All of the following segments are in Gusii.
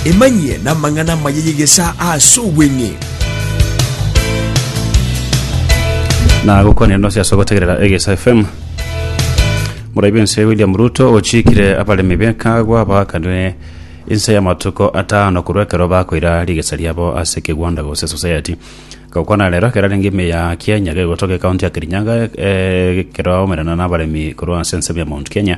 Emanyie namang'ana amaya y'egesaa ase obweng'e. nagokwanire nonsi ase ogotegerera egesa fm morai b'ense william ruto ochikire abaremi bekagwa baakanire inse y'amatuko atano korwa ekero bakoira rigesa riabo ase kegwanda gose society gokwana rero ekero arenge ime ya kienya gegotoka ekaunti ya kirinyaga eh, ekero aomerana n'abaremi korwa ase ensemo ya mount kenya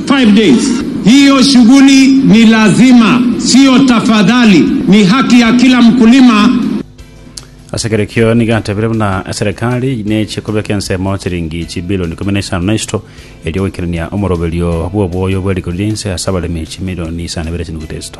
Hiyo shughuli ni lazima, sio tafadhali, ni haki ya kila mkulima. Ase ekero ekio nigo atebire buna eserekari neche kobeka ensemo chiringi chibilioni ikomi na isano na isatu erio goikerania omoroberio bw'oboyo bwe rigori rinse ase abaremi chimilioni isano na ibere chinuguta isatu.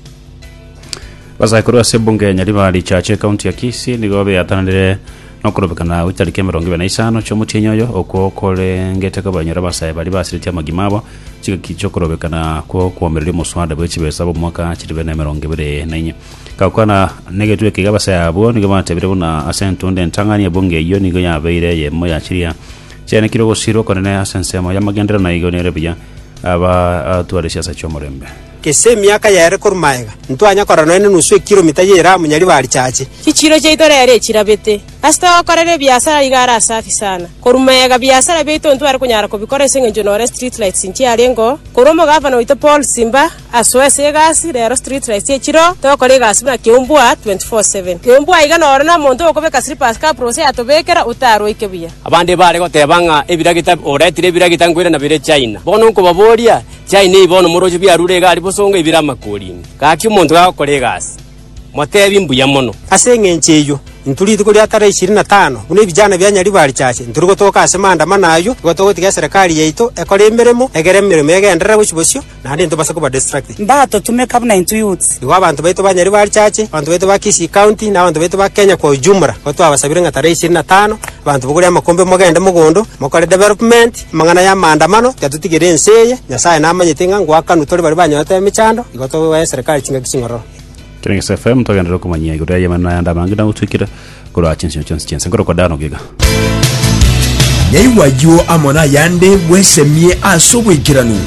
Basaikuru ase ebunge ya Nyaribari Richache ekaunti ya Kisii nigo beatananire nokorobekana gwe tariki emerongo ebere na isano chi'omotienyi oyo okwo korengete kobanyora abasae baria basiretie amagima abo chigaki chi'okorobekana kw'okwomereria omoswada bwe chibesa bw'omwaka chiri bene emerongo ebere na inye gakwana negetwe ekiga abasae abwo nigo batebire buna ase entunde entang'ani ebunge eyio nigo yabeire eyemo ya chiria chianekire ogosirwa okonene ase ensemo y'amagenderero naigo nere buya abatware siasa chi'omorembe Gese emiaka yaere korwa magega, ntwanya korora nonya nenusu ekiromita ye Iramu nyaribari chache. Chichiiro chiaito rero echirabete. Ase togokorera ebiasara rigare ase afi sana. Korwa magega biasara biaito ntware konyara kobikora ase eng'encho nore street lights nchiarengeo. Korwa omogavana oito Paul Simba asoe ase egasi rero street lights echireo togokora egasi buna keumbua 24 seven. Keumbua iga nore nomonto okobeka slippers kaprose yatobekera otaroike buya. Abande bare goteba ng'a ebiragita oretire ebiragita nkoirana bire China. Bono nkobaboria. Chiai nei bono moroche biarure egari bosongo ibere amakorini. Gaki omonto gagokora egasi, motebi mbuya mono. Ase engencho eyio, intwe rituko ria tarehe ishirini na tano, buna ebijana bia Nyaribarichache, ntori gotoka ase manda amana ayio, nigo togotiga eserekari yaito ekore emeremo, egere emeremo egenderere gochia bosio, naende intwe base koba distracted. Mbatotumeka buna intwe youths. Igo abanto baito ba Nyaribarichache, abanto baito ba Kisii County, na abanto baito ba Kenya kwa ujumla, nigo twabasabire ng'a tarehe ishirini na tano, abanto bogore amakombe mogende mogondo, mokore development, Amang'ana y'amaandamano tiatutigere ense eye. Nyasae namanyete ng'a ngoakanwa tore baria banyorete emechando, igo togoa eserikari chingaki ching'ororo. Times FM togenderere komanyia igoro y'ayemo na ayande amange nagotwikire korwa ase ensinyo chionsi chi'ense nkorokwa Dan Ogiga. Naigwa ayio amo nayande bwesemie ase obwaikeranu.